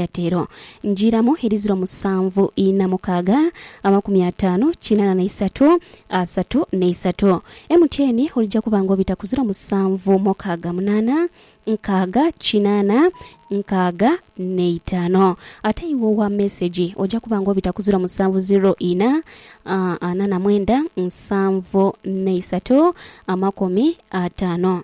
Yatiro, Njiramu edhiziro musanvu ina mukaaga, amakumi ataanu kinana na isatu, asatu na isatu. MTN, Olija kuba nga obita ku ziro musanvu mukaaga munana, nkaaga kinana, nkaaga na itano. Ate iwe owa mesegi, oja kuba nga obita ku ziro musanvu ziro ina, ana na mwenda, nsanvu na isatu, amakumi ataano.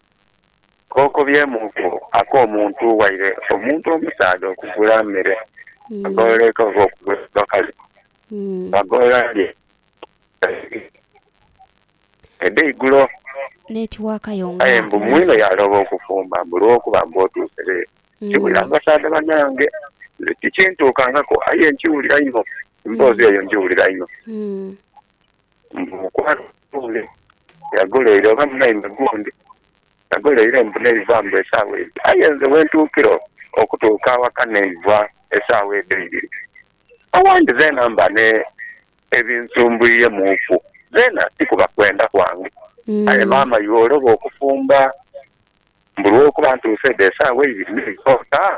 Kookobyemuuku ak'omuntu waire omuntu omusaadha okugula mere, agolola ekava okugula abakazi, bwagolola lye edheigulo. Aye mbu mwine yaalooba okufumba mbu lwokuba mbu otuuse leero. Nkibulira mu basaadha banange, nze tikintuukangaku aye nkiwulira inho, emboozi eyo ngiwulira inho. Mbu mukwano gundi yaguleire oba munaime gundi yaguleire mbu neiva mbu esaawa eyo. Aye nze wentuukira okutuuka awaka neiva esaawa edho eibiri awandi zeena mba n'ebinsumbwiremuuku zeena ti kuba kwenda kwange. Aye maama iwe oloba okufumba mbu lwokuba ntuuse dho esaawa eibiri neiva otaa?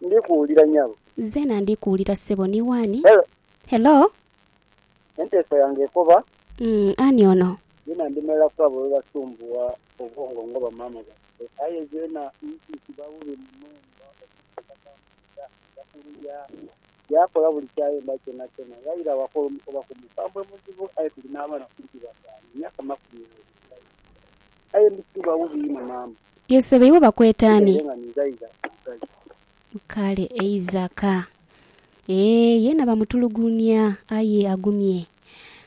Ndi kuwulira nyabo. Nzena ndi kuwulira sebo ni wani? Hello. Hello. Enteesa yange ekoba. Uhmm ani ono? Nzena ndimelaku abo abebasumbuwa obwongo nga bamaama baife aye nzena nti kiba bubi muno nga omuntu atatambuliza aja kuluya yakola buli kyayenda kyonakyona ghaire awakola omukobaku mukambwe muzibu aye tuli n'abaana kumpi bataanu myaka makumi abiri aye ndi kiba bubi inho maama. Ye sebo iwe bakweta ani? Kale Eizaka. Eeh yena bamutulugunia aye agumye.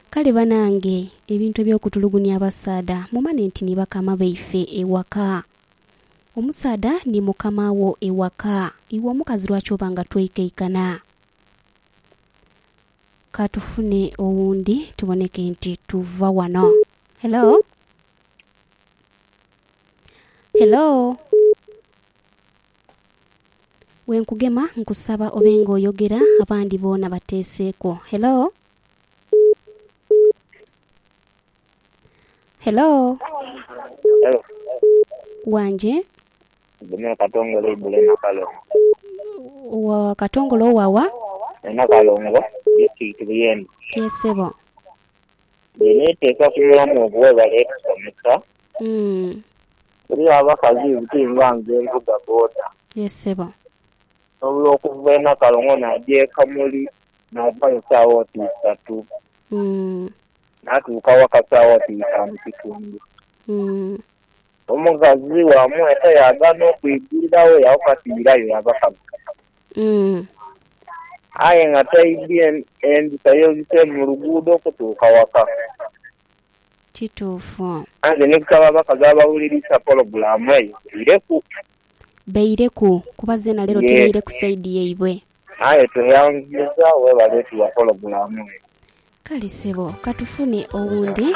Kale banange ebintu ebyokutulugunia abasaadha mumane nti ni bakama baife ewaka. Omusaadha ni mukama wo ewaka. Iwe omukazi lwaki oba nga tweikaikana? Ka tufune owundi tuboneke nti tuva wano. Hello? Hello? Bwe nkugema nkusaba obe nga oyogera abandi boona bateeseeko. Hello? Hello? Hello? Wanje? Ndhuma e Katongole eigulu e Nakalongo. Wa Katongole owa wa? E Nakalongo, Disitulikiti Buyende. Ye ssebo. Nze neteeka ku mulamu ogwo webale etusomesa. Umm. Eriyo abakazi ibuti nga nze nvuga boda. Ye ssebo. Osobola okuva e Nakalongo naja e Kamuli navayo saawa oti isatu. Umm. Natuuka waka saawa oti itaanu kitundu. Umm. Omukazi wamu eka yaagaana okwigulilawo yawoka ati irayo yabakazi. Aye nga taidhi endhuta yebise mu luguudo okutuuka waka. Kituufu. Nze ni kusaba abakazi abawulirisa pologulaamu eyo baireku. Baireku kuba zeena leero tibaire ku saidi yaibwe. Aye tweyanziza webale tuwa pologulaamu eyo. Kale sebo katufune owundi.